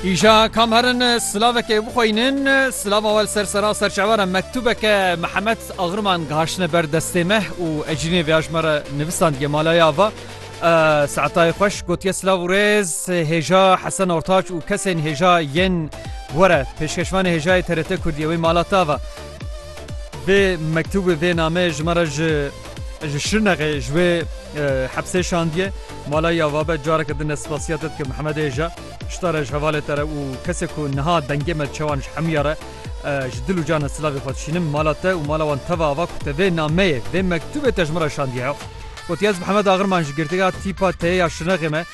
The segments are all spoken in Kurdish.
Îja kam herin silavekê bixweynin, silava we li ser sera serçewera mektûbeke Mihemed Agriman gihiştine ber destê me û ecrînê vêya ji me re nivisandiye malaya va. Seetayê xweş gotiye silav û rêz hêja Hesen Ortaç û kesên hêja yên were pêşkeşvanê hêjayê TRT Kurdiyê wê malata va. Vê mektûbê vê nameyê ji me re ji Ji Şirnexê ji wê hepsê şandiye. Mala ya vabe careke din ez spasiya te dikim Hemed Êja. Şita re ji hevalê te re û kesê ku niha dengê me çewan ji hemiya re ji dil û cana silavê xwe dişînim. Mala te û mala wan teve ava ku te vê nameyê, vê mektûbê te ji min re şandiye ya. Gotiye ez bi Hemed Agir man ji girtiga tîpa teyê ya Şirnexê me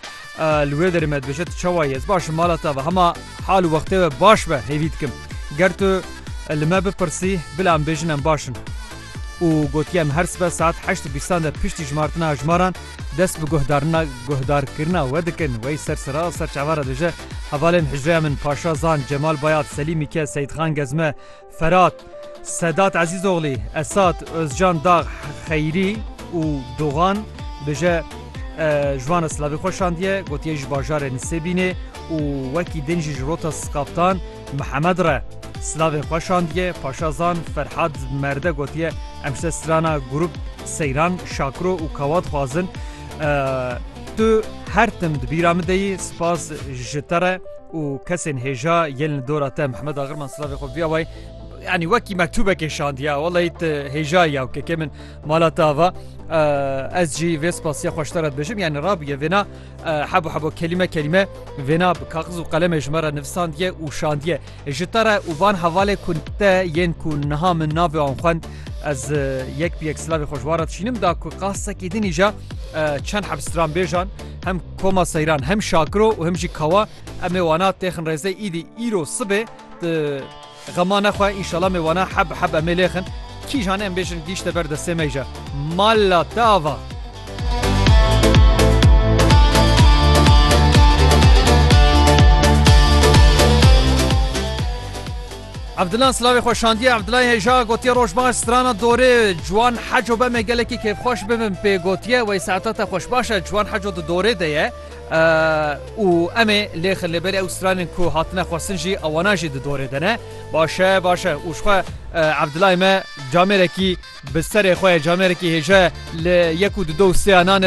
li wê derê me dibêje tu çawa yî ez başim mala te ava hema hal û wextê we baş be hêvî dikim. Ger tu li me bipirsî bila em bêjin em baş in. û gotiye em her sibe saet heşt û bîstan de piştî jimartina jimaran dest bi guhdarina guhdarkirina we dikin. Wey ser sira ser çava re dije, Hevalên hicreya min Paşa Zan, Cemal Bayat, Selîm Mîke, Seyîdxan Gezme, Ferat, Sedat Ezîzoglî, Esat, Ozcan Dag, Xeyrî û Dogan dije ji wan re silavê xwe şandiye, gotiye ji bajarê Nisêbînê û wekî din jî ji rota Skaftan, Mihemed re silavê xwe şandiye, Paşazan Ferhad Merde gotiye, Em ji te strana grûp Seyran, Şakiro û Kawa dixwazin. Tu her tim di bîra min de yî, spas ji te re û kesên hêja yên li dora te Mihemed Agirman silavê xwe biya wayê yani wekî mektûbekê şandiya weleyî te hêjayî ya kekê min mala te ava ez jî vê spasiya xweştera dibêjim yani rabûye vêna Hebo hebo kelîme kelîme vêna bi kaxiz û qelemê ji me re nivisandiye û şandiye ji te re û van hevalê ku te yên ku niha min navê wan xwend ez yek bi yek silavê xweşwara dişînim da ku qasekî din îja çend heb stranbêjan hem koma seyran hem şakiro û hem jî kawa em ê wana têxin rêzê îdî îro sibê Xema nexwe înşala me wana heb bi heb emê lêxin. Kîjan em bêjin gîşte ber destê me jî mala te ava. Evdilan silavê xwe şandiye Evdilayê hêja gotiye roj baş strana dorê ciwan heco beme gelekî kêfxweş bibim pê gotiye wey saeta te xweş baş e ciwan heco di dorê de ye. Û em ê lêxin li berê ew stranên ku hatine xwestin jî ewana jî di dorê de ne. Baş e, baş e. Û jixwe Ebdulay me camêrekî bi serê xwe ye, camêrekî hêja ye li yek û di du û sêya nan e.